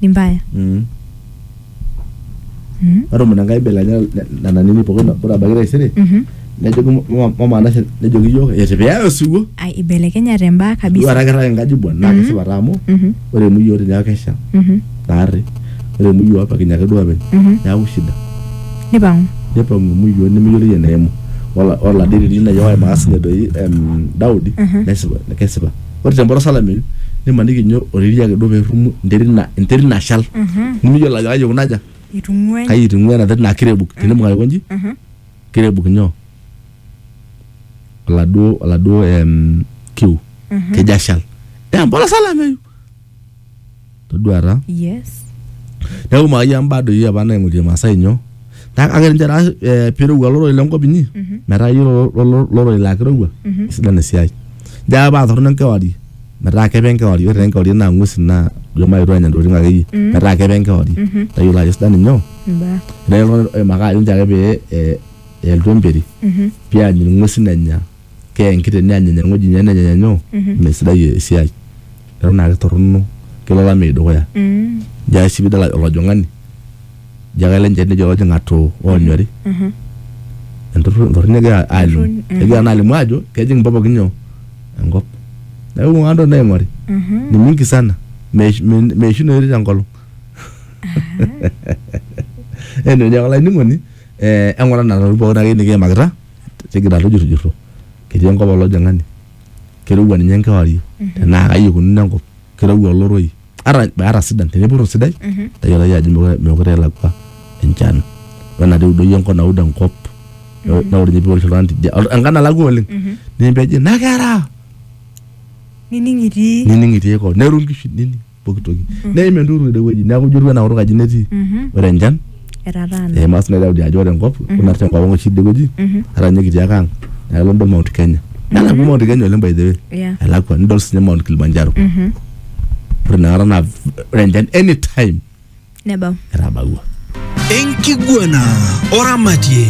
ni mbaya Mm. Mhm. ore omon enkai belanya nena nini pookin ore abaiki taisere Mhm. nejoki mama- mama nashe nejoki iyiook eti piyaya osiwuo ai ibelekenyate imbaa duo kabisa ata kirrag enkaji buan naa Mhm. kesipa taa amu Mhm. ore enuyi oti neeku kesha Mhm. naarri ore enuyi opakinye ake duo openy Mhm. neeku shida nipang'u nepang'u emuyi oti nemeyioloi eneimu Ola- oladiri lino ejo wae maas ninye doi em, daudi Mhm. nesipa kesipa ore tempolos olameyu nimaniki inye oriri ake duo perrumu enterit na enterit nashal nimiyiolo ajo kai ikuna aja itung'uai kai itung'ua ena terit naa kirebuk tenibung aikonji kirebuk nyoo oladuo oladuo em kiu kejo ashal tempolos olameyu. todua taa Yes. neeku maayia mbaa doi apa naing'orie masaa inyo Naa kake ninche taa eh, pirowua loroi lenkop inyi metaa iyie lo- lo- lo- loroi laa kirowua isidan esiai njo ake paa torrono enkewarie metaa kepe enkewarie ore taa enkewarie naa ng'uesin naa ijo mayetu anya ntokitin akeyie metaa kepe enkewarie tayiolo ajo sidan inyo Mbaa. ore iltung'anak oimaka ajo njo ake pee eh, elotu emperi peany ing'uesin enya Keya enkiteng neanyany eng'oji nye nenyanyanyo mee sidai esiai. Eton naake torono kelo olameyu dukuya. Jaa sii pidol olojong'ani ijo ake ele njeri nejo olojong' atoo onyori. Entorroni egira alimu. Egira naa alimu ajo kejing' mbaa pookin nyoo? enkop. Neeku ibung'a ntokitin naing'ori ni mingi sana meishunoyu te nkolong'. Anyway olainining'oni eng'ura nena tokitin pookin akeyie nikiimakita. tigira tujurjurro ketii enkop olojing'ani kirowua ninye enkewarie tenaa kai ikununo enkop kirowua oloroi ata ata sidan tenipurru sidai tayiolai ajo mekure mekure elakua enchan wenatii eudoyio enkop naud enkop ne- neud ninye piwosh oltung'ani tidia ol- enkang nalakua oleng nimpeji nakera nining itii nining itii koo neru inkishu nining pooki toki neim enturur ede wueji neeku ijo etiu enaa kutuk aji netii ore enchan etataana eima sii Daudi ajo ore enkop kuna te nkop ang oshi ide wueji ata ninye kitii ake ang naa kelo nidol Mount Kenya nelakua Mount Kenya oleng by the way Yeah. elakua nidol sinye Mount Kilimanjaro ore inakata naa ore enchan anytime Nebau. etabaua enkiguana oramatie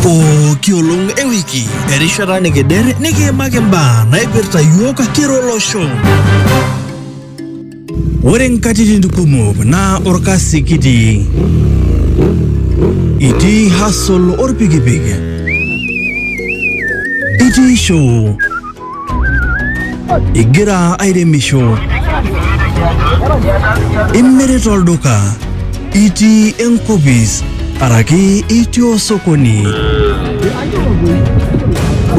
pooki olong ewiki erishata nikider nikiimaki mbaa naipirta yiok kira olosho ore nkatitin kumok naa orkasi kitii itii hasol orpikipik itii show Igira airemisho, imirita olduka, itii enkopis araki itii osokoni.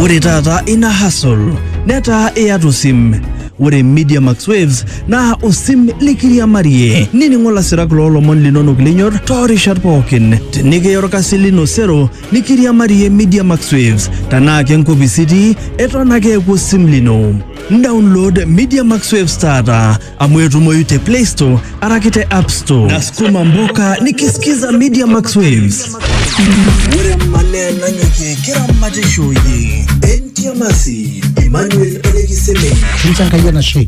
Ore taata ina hustle netaa iyata osim. Ore Media Max Waves naa osim likiriamarie nining'o lasirak loolomon linonok linyor toorishat pookin. Tenikiya orkasi lino sero Nikiriamarie Media Max Waves tenaa ke nkopis itii eton ake eeku osim lino. Download Media Max Waves taata amu etumoyu te Play Store araki te App Store. Nasukuma mboka nikisikiza Media Max Waves. Ore mane nanyokie kiramatishoi. Entiamasi Emmanuel Elekiseme. Ninche Enkai enashe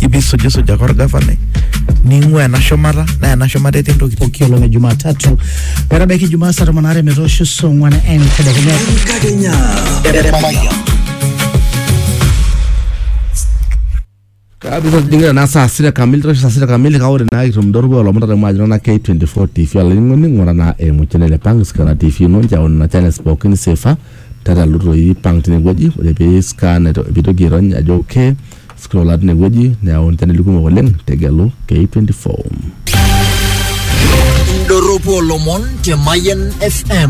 ipi sujisuja kwa orgavanai ning'ua ena shumata naa ena shumata etii ntokitin pooki olong e Jumatatu metabaiki Jumaa saa tomon aare metoosho saa ong'wan entedekenya. Enkakenya. Kabisa tujingira naa saa sita kamili tosho saa sita kamili kake ore naa kitum dorgo olomon taata mwajo na K24 TV olainining'oni ng'ura naa eimu channel e Pang Scanner TV ino nchao nena channels pookin sefa tata lutoi Pang tinewueji ore pee scan aito- piitoki airony ajo okay Scrolla tine wueji neyau inchaneli kumok oleng tegelu K24. Indorropu olomon te Mayian FM.